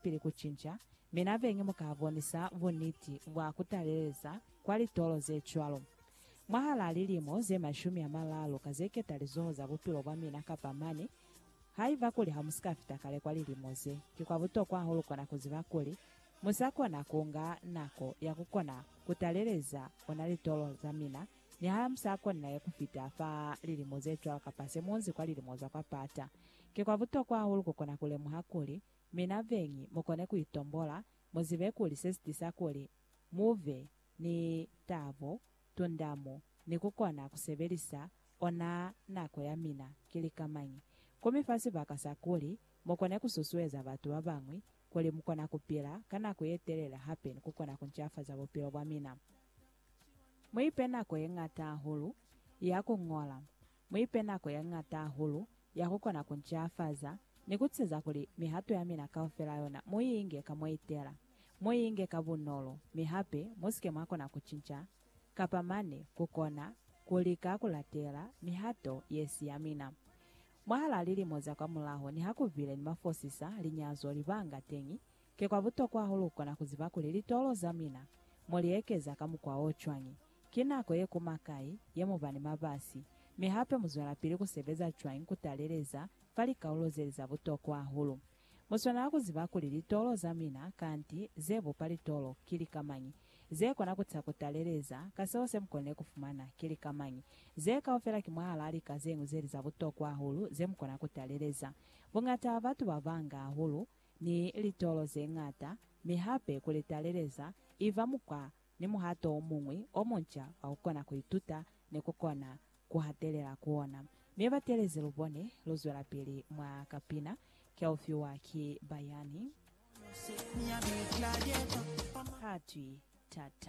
Pili ku cinca, mi na bengi mu ka bonisa buniti bwa ku taleleza kwa litolo ze cwalo. Mwahalaa lilimo ze mashumi a malaalu ka ze keta lizoho za bupilo bwa mina kapa mane, haiba kuli ha mu si ka fita kale kwa lilimo ze, ki kwa butokwa hahulu kona ku ziba kuli mu sa kona ku nga nako ya ku kona ku taleleza ona litolo za mina niha mu sa konilaye ku fita fa lilimo ze cwalo kapa se mu nzi kwa lilimo za kwa pata. Ki kwa butokwa hahulu ku kona ku lemuha kuli Mi na beñi mukone kuitombola, muzibe kuli sesitisa kuli mube ni tabo, tundamo, ni kukona kusebelisa ona nako yamina ki lika mañi. Kumifa sibaka sa kuli mukone kususueza batu babañwi kuli mukona kupila ka nako yetelele hape ni kukona kuncafaza bupilo bwamina. Muipe nako yeñata hahulu ya kuñola. Mu ipe nako ya ñata hahulu ya ku kona ku ncafaza ni ku ceza kuli mihato ya mina kaufela yona mu i inge ka mwa itela. Mu i inge ka bunolo, mi hape mu si ke mwa kona ku cinca kapa mane ku kona ku lika ku latela mihato ye si ya mina. Mwahal'a lilimo za kwamulaho, niha ku bile ni mafosisa, linyazo, libanga teñi, Ki kwa butokwa hahulu kukona kuziba kuli litolo za mina mo li ekeza ka mukwa o cwañi, ki nako ye kuma kai ye mu ba ni mabasi, mi hape mu zwelapili ku sebeza cwañi ku taleleza fa likaulo ze li za butokwa hahulu. Mu swanela ku ziba kuli litolo za mina, kanti ze bupa litolo, ki lika mañi, ze kona ku ta ku taleleza ka seo se mu konile ku fumana, ki lika mañi. Ze kaufela ki mwahalaa lika ze ñwi ze li za butokwa hahulu ze mu kona ku taleleza. Buñata ha batu ba banga hahulu ni litolo ze ñata, mi hape ku li taleleza i ba mukwa ni muhato o muñwi o munca wa ku kona ku ituta ni ku kona ku hatelela ku ona. Mi batelezi lu bone lu zwelapili mwa kapina Ke U Fiwa Ki Bayani. Ha twi, Tata.